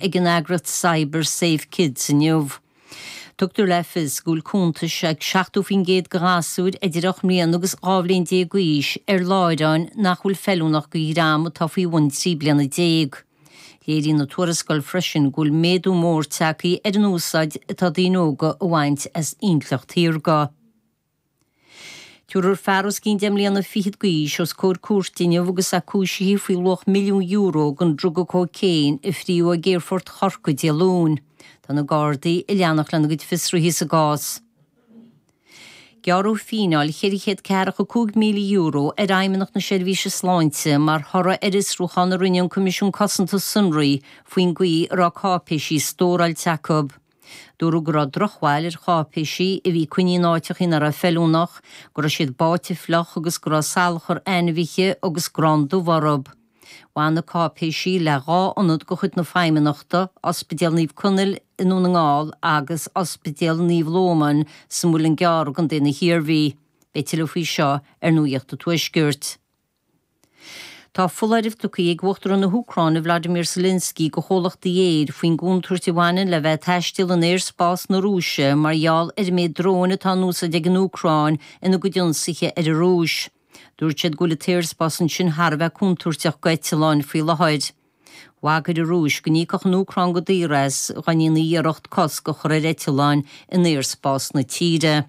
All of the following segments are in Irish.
ag an eagras Cyber Safe Kids inniu. Tugtar le fios go bhfuil cuntais ag 70% de ghasúir idir 8 mbliana agus 12 bhliain d'aois ar láithreáin nach bhfuil feiliúnach do dhream atá faoi bhun 13 bliana. Léiríonn an tuarascáil freisin go bhfuil méadú mór tagtha ar an úsáid atá daoine óga a bhaint as intleacht shaorga. Tabharfar fear os cionn deich mbliana fichead d'aois os comhair cúirte inniu agus é cúisithe faoi luach milliún euro den druga cóicéin a frítheadh ag aerfort Chorcaí Dé Luain. Tá na Gardaí ag leanacht lena gcuid fiosruithe sa gcás. Gearradh fíneáil cheithre chéad ceathracha cúig míle euro ar Fheidhmeannacht na Seirbhíse Sláinte mar thoradh ar fhiosrúchán a rinne an Coimisiún Cosanta Sonraí faoin gcaoi a raibh cáipéisí stóráilte acu. Dúradh go raibh drochbhail ar cháipéisí a bhí coinnithe in áiteachaí nach raibh feiliúnach, go raibh siad báite fliuch agus go raibh salachar ainmhithe agus grán dubh orthu. Bhain na cáipéisí le dhá ionad de chuid na Feidhmeannachta, Ospidéal Naomh Conaill i nDún na nGall agus Ospidéal Naomh Lóman sa Mhuileann gCearr i gContae na hIarmhí. Beidh tuilleadh faoi seo ar Nuaíocht an Tuaiscirt. Tá foláireamh tugthaí ag Uachtarán na hÚcráine Volodymyr Zelensky go chomhlachtaí aeir faoin gcontúirt a bhaineann le bheith ag taisteal in aerspás na Rúise mar gheall ar an méid dróin atá in úsáid ag an Úcráin ina gcuid ionsaithe ar an Rúis. Dúirt sé go bhfuil an t-aerspás ansin thar a bheith contúirteach go eitleáin faoi láthair. Bhagair an Rúis go n-íocfadh an Úcráin go daor as dhá ndéanaidís iarracht cosc a chur ar eitleáin in aerspás na tíre.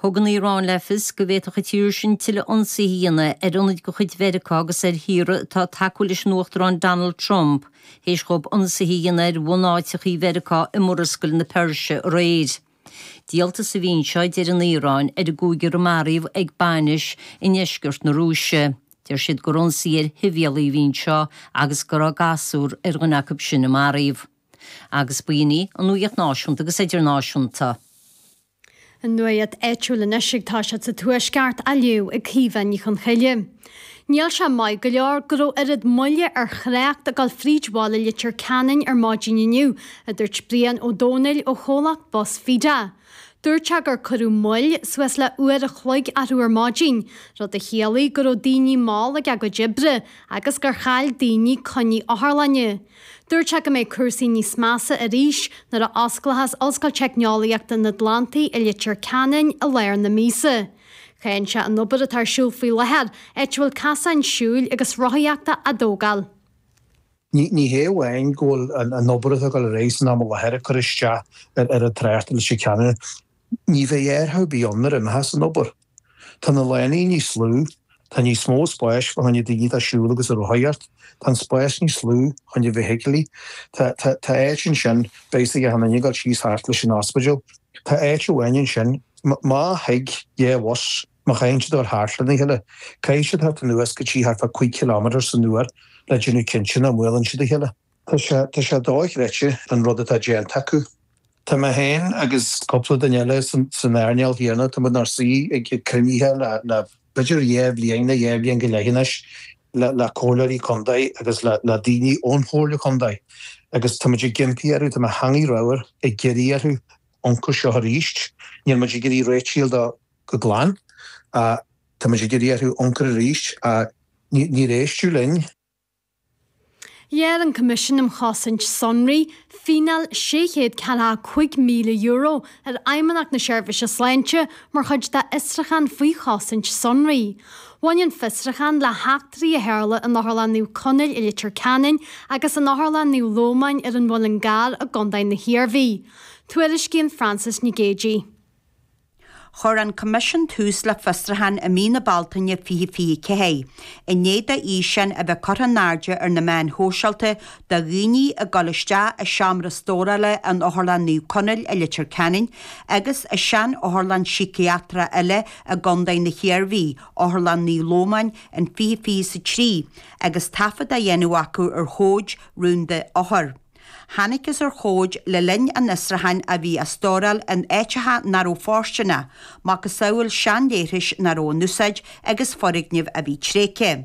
Thug an Iaráin le fios go bhféadfadh an tír sin tuilleadh ionsaithe a dhéanamh ar ionaid de chuid Mheiriceá agus ar thíortha atá tacúil leis an Uachtarán Donald Trump théis dhóibh ionsaithe a dhéanamh ar bhunáiteachaí Mheiriceá i Murascaill na Peirse aréir. Díoltas a bhí anseo, a deir an Iaráin, ar an gcúigear a maraíodh ag bainis i ndeisceart na Rúise. Deir siad gur ionsaí ar shibhialaigh a bhí anseo agus go raibh gasúr ar dhuine acu sin a maraíodh. Agus ba in í an nuaíocht náisiúnta agus idirnáisiúnta. An nuaíocht áitiúil anois ag tosaí sa Tuaisceart á léamh ag Caoimhe Ní Chonchoille. Níl sé maith go leor go raibh oiread moille ar thrácht ag dul fríd bhaile Leitir Ceanainn ar maidin inniu, a dúirt Brian Ó Domhnaill ó chomhlacht Bus Feda. Dúirt sé gur cuireadh moill suas le uair a chloig orthu ar maidin, rud a chiallaigh go raibh daoine mall ag a gcuid oibre agus gur chaill daoine coinní otharlainne. Dúirt sé go mbeidh cúrsaí níos measa arís nuair a osclóchas Ollscoil Teicneolaíochta an Atlantaigh i Leitir Ceanainn i lair na míosa. Cháin sé an obair atá ar siúl faoi láthair, áit a bhfuil casáin siúil agus rothaíochta á dtógáil. Ní hé amháin go bhfuil an obair atá ag dul ar aghaidh san am i láthair ag cur isteach ar an trácht leis an cheannaire, ní bheidh athrú ar bith ann nuair a imeochas an obair. Tá na lánaí níos lú, tá níos mó spáis fá choinne daoine atá ag siúl agus ag rothaíocht, tá an spás níos lú fá choinne feithiclí, tá áit ansin, beidh a fhios ag achan nduine ag dul síos thart leis an ospidéal, tá áit amháin ansin, má thig dhá bhus, Má chaitheann siad a dhul thart lena chéile, caithfidh siad a theacht anuas go dtí thart fá cúig chiliméadar san uair le déanamh cinnte nach mbuaileann siad a chéile. Tá sé, tá sé dóchreidte an rud atá déanta acu. Tá mé féin agus cúpla duine eile san earnáil chéanna, tá muid inár suí ag cruinnithe le, le b'fhéidir dhá bhliain nó dhá bhliain go leith anois, le, le comhairleoirí contae agus le, le daoine ón chomhairle contae agus tá muid ag impí orthu, tá mo theangaidh ramhar ag iarraidh orthu amharc air seo arís, níl muid ag iarraidh réitithe a fháil de, go glan. Tá muid ag iarraidh orthu amharc air arís ach níor éisteadh linn. Ghearr an Coimisiún um Chosaint Sonraí fíneáil €645,000 ar Fheidhmeannacht na Seirbhíse Sláinte mar chuid dá fhiosrúchán faoi chosaint sonraí. Bhain an fiosrúchán le heachtraí a tharla in Otharlann Naomh Conaill i Leitir Ceanainn agus in Otharlann Naomh Lómáin ar an Muileann gCearr i gContae na hIarmhí. Tuairiscíonn Frances Nic Géadaigh. Chuir an Coimisiún tús le fiosrúchán i mí na Bealtaine 2024 i ndiaidh d'fhíseáin a bheith curtha in airde ar na meáin shóisialta de dhaoine ag dul isteach i seomra stórála in Otharlann Naomh Conaill i Leitir Ceanainn agus i sean-otharlann síciatrach eile i gContae na hIarmhí, Otharlann Naomh Lómáin, in 2023 agus taifead á dhéanamh acu ar chomhaid rúnda othar. Thángthas ar chomhaid le linn an fhiosrúcháin a bhí á stóráil in áiteacha ná raibh fóirsteanach, macasamhail seanleithris ná raibh in úsáid agus foirgnimh a bhí tréigthe.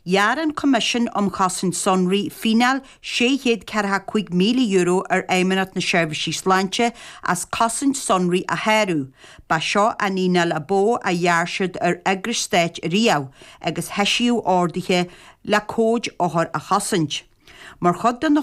Ghearr an Coimisiún um Chosaint Sonraí fíneáil €645,000 ar Fheidhmeannacht na Seirbhísí Sláinte as cosaint sonraí a shárú, ba seo an fhíneáil ab mhó a ghearr siad ar eagras stáit riamh, agus heisíodh orduithe le comhaid othar a chosaint. Mar chuid de na.